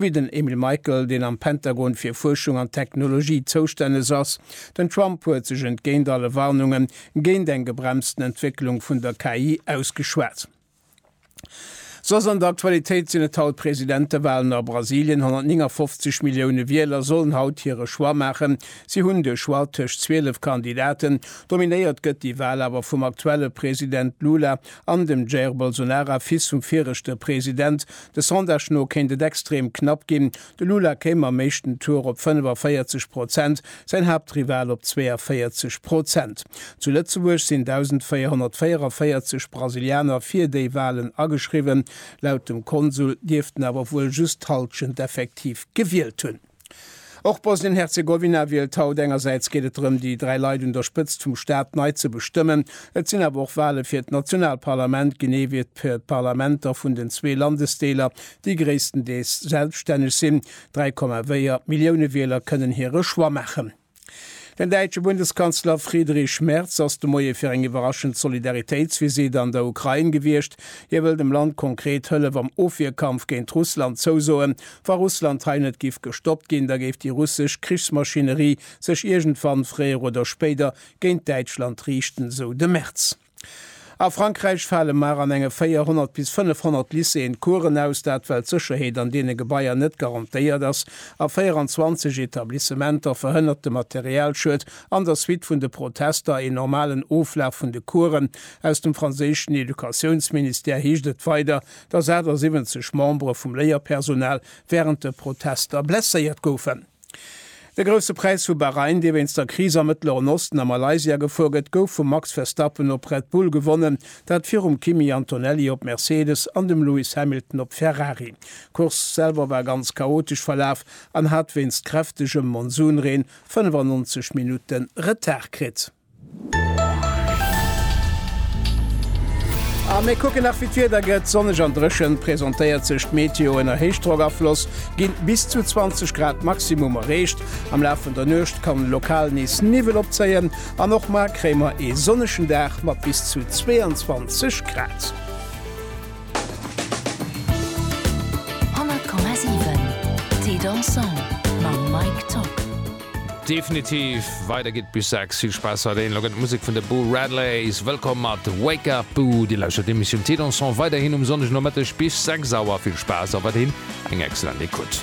wéi den Emil Michael, deen am Pentagon fir Fuerschung an Technologie zoustänneg ass. Den Trump huet sech entgéint alle Warnunge géint eng gebremsten Entwécklung vun der KI ausgeschwat. Soss an der Aktualitéit sinn et haut d'Presidentewalen a Brasilien. 159 Millioune Wieler sollen haut hire Choix maachen. Si hunn de Choix tëscht 12 Kandidaten. Dominéiert gëtt déi Wal awer vum aktuelle President Lula An dem Jair Bolsonara, Fils vum viregte President. De Sondage no kéint et extrem knapp ginn. De Lula kéim am éischten Tour op 45 Prozent, säin Haaptrival op 42 Prozent. Zu Lëtzebuerg sinn 1.444 Brasilianer fir déi Walen ageschriwwen. Laut dem Konsul dierften awer wuel just d'Hallschent effektiv gewielt hunn. Och Bosnien-Herzegowina wielt haut. Engersäits geet et drëm, déi dräi Leit un der Spëtzt vum Staat nei ze bestëmmen. Et sinn awer och Wale fir d'Nationalparlament, genee wéi d'Parlamenter vun den zwee Landesdeeler, déi gréisstendeels selbstänneg sinn. 3,4 Millioune Wieler kënnen hire Choix maachen. Den däitsche Bundeskanzler Friedrich Merz ass de Moie fir eng iwwerraschend Solidaritéitsvisitt an der Ukrain gewiescht. Hie wëll dem Land konkret Hëllef am Ofwierkampf géint Russland zousoen. Wa Russland hei net giff gestoppt ginn, da géif déi russesch Krichsmaschinerie sech iergendwann, fréier oder spéider, géint Däitschland riichten, sou de Merz. A Frankräich fale mar an enge 400 bis 500 Lycéeën d'Coursen aus, dat well d'Sécherheet an deene Gebaier net garantéiert ass. A 24 Etablissementer verhënnert de Materialschued an der Suite vun de Protester een normalen Oflaf vun de Coursen. Aus dem franséischen Educatiounsministère heescht et weider, datt 78 Membere vum Léierpersonal wärend de Protester blesséiert goufen. De Grousse Präis vu Bahrain, dee wéinst der Kris am Mëttleren Osten a Malaysia gefuer gëtt, gouf vum Max Verstappen op Red Bull gewonnen, dat virum Kimi Antonelli op Mercedes an dem Lewis Hamilton op Ferrari. D'Course selwer war ganz chaotesch verlaf an hat wéinst kräftegem Monsunreen 95 Minutte Retard kritt. A mir kucken nach wéi d'Wieder gëtt. Sonneg an dréchen presentéiert sech d'Meteo. Ënner Héichdrockafloss ginn bis zu 20 Grad Maximum erreecht. Am Laf vun der Nuecht kann lokal nees Niwwel opzéien an och mar kréie mer ee sonnegen Dag mat bis zu 22 Grad. Definitiv, weider geet bis 6. Vill Spaass weiderhin, elo gëtt d'Musek vun de Boo Radleys wëllkomm mat Wake Up Boo. Dir lauschtert d'Emissioun Thé Dansant weiderhin um Sonndegnomëtteg bis 6 Auer. Vill Spaass a weiderhin eng excellent Ecoute.